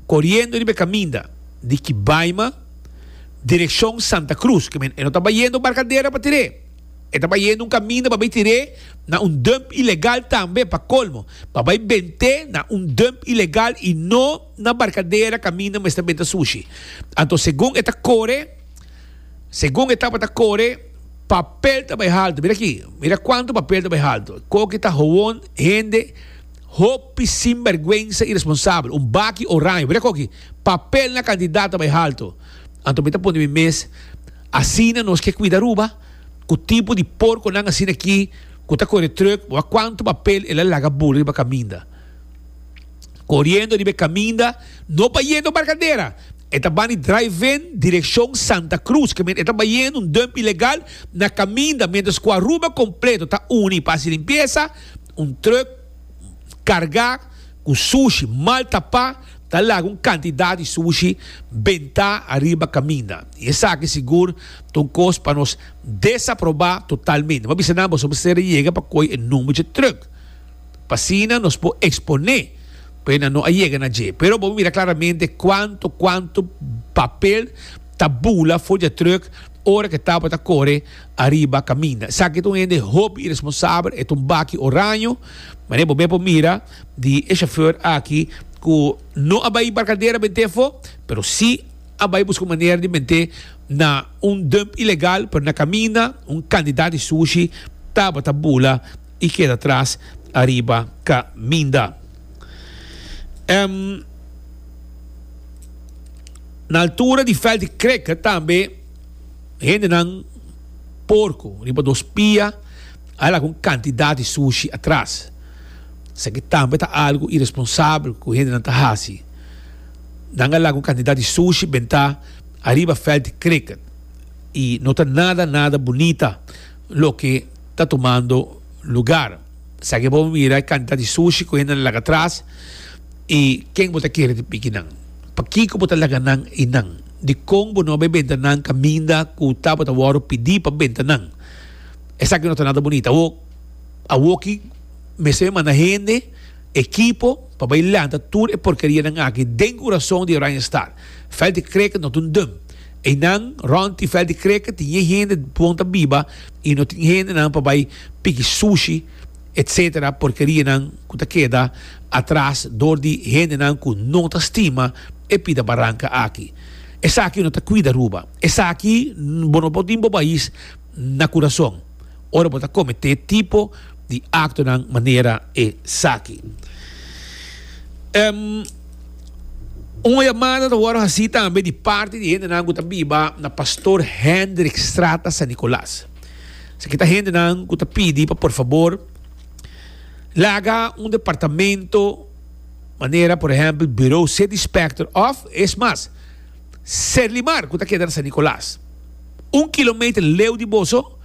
Koriendo riba e kaminda di Kibaima direkshon Santa Krus, ke men e no ta bayendo Barkadera pa tir'é, e ta bayendo un kaminda pa bai tir'é na un dump ilegal tambe, pa kolmo, pa bai bent'é na un dump ilegal i no na Barkadera kaminda mester benta sushi. Anto segun e ta kore, segun e tabata kore, papel ta bai haltu, mira aki, mira kuantu papel ta bai haltu, koki ta howon, hende. Hopi sinbergwensa iresponsabel. Un baki oraño. Mira koki papel na kandidat ta bai haltu. Anto mi ta pone mi mes, asina nos ke kuida Aruba? Ku tipo di porkonan asina aki ku ta kore trùk? Bo a kuantu papel el a laga bulu riba kaminda? Koriendo riba e kaminda, no bayendo Barkadera. E ta bani Drive-In direkshon Santa Krus. Ke men e ta bayendo un dùmp ilegal na kaminda miéntras ku Aruba kompleto ta uni pa hasi limpiesa. Un truk kargá ku sushi mal tapá ta laga un kantidat di sushi bentá ariba kaminda i esaki sigur ta un kos pa nos desaprobá totalmente. Bo a bisa nan boso bo ser a yega pa koi e number dje truk pa asina nos por eksponé ku e nan no a yega na dje. Pero bo a mira klaramente kuantu kuantu papel ta bula for dje truk ora ku e tabata kore. ariba kaminda. Esaki ta un hende hopi iresponsabel, e ta un baki oraño. Mane bo ben por mira di e shofèr aki ku no a bai Embarcadera bent'é afó, pero si a bai buska un manera di mente na un dump ilegal, pero na kaminda un kandidat di sushi tabata bula i keda tras ariba kaminda. Em na altura di Veld di Kreke tambe. Hendenan porco riba dos pia a laga un cantidad di sushi atras. Esaki tambe ta algo iresponsabel cu hendenan ta haci. Nan a laga un cantidad di sushi benta ariba veld di cricket y no ta nada nada bunita loke ta tumando lugar. Esaki bo a mira e cantidad di sushi cu hendenan a laga atras y ken bo ta kere tin piki nan? Pakico bo ta laga nan einan? Dikon bo no bai benta nan kaminda ku tabata wòru pidi pa benta nan? Esaki no ta nada bunita. Awo, awoki mester mi manda hende, ekipo, pa bai lanta tur e porkerianan aki den kurason di Oranjestad. Veld di Kreke no ta un dùm. Einan, rònt i Veld di Kreke tin e hende bon ta biba i no tin hendenan pa bai piki sushi. etc. Porkerianan ku ta keda atras dor di hendenan ku no ta stima e pida baranka aki. Esaki no ta kuida Aruba. Esaki bo no por tin bo pais na kurason ora bo ta kometé tipo di aktonan manera esaki. Ehm, Un yamada ta wòrdu hasí tambe di parti di hendenan ku ta biba na Pastor Hendrik Strata San Nicolas. Si aki ta hendenan ku ta pidi pa por fabor laga un departamento manera por ehèmpel Buro City Specter òf es mas Serlimar ku ta keda na San Nikolas. Un kilometer leu di boso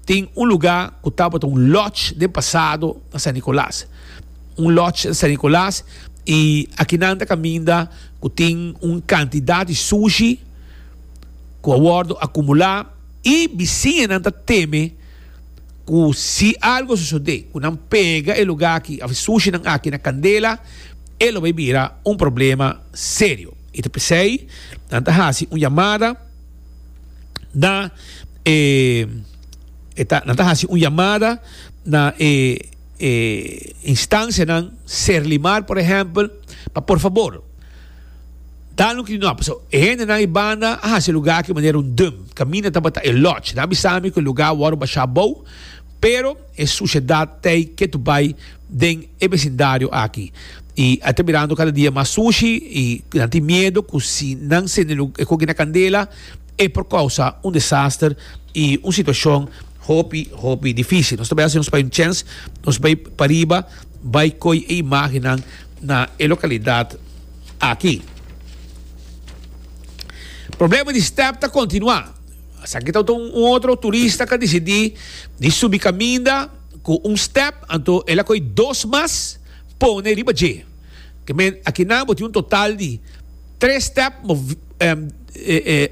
tin un lugá ku tabata un lòdge den pasado na San Nikolas. Un lòdge na San Nikolas i aki nan ta kaminda ku tin un kantidat di sushi ku a wòrdu akumulá. I bisiñanan ta teme ku si algu a sosodé, ku nan pega e lugá aki òf e sushinan aki na kandela, e lo bai bira un problema serio. I ta p'esei nan ta hasi un yamada na e e ta nan ta hasi un yamada na e e instansianan, Serlimar por ehèmpel, pa por fabor, Dal un kri no, pasobra e hendenan i banda a hasi e lugá aki manera un dùm. Kaminda tabata e lòch. Nan a bisa mi ku e lugá a wòrdu bashá abou, pero e sushedat t'ei ke tu bai den e besindario aki. I a ta mirando kada dia mas sushi i nan tin miedu ku si nan sende lu, e koki na kandela, e por kousa un desaster i un situashon hopi, hopi difísil. Nos ta bai hasi nos bai un chèns, nos bai pariba bai koi e imágennan. na e localidad aki. Problema di step ta continua. Esaki ta un otro turista cu a decidi di subi caminda cu un step, anto el a coge dos mas pone riba dje. Te men, aki nan bo tin un total di tres step, mo, eh, eh, eh,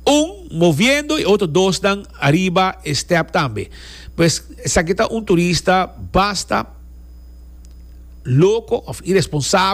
Un moviendo e otro dosnan ariba e step tambe. Pues esaki ta un turista basta loco of iresponsabel.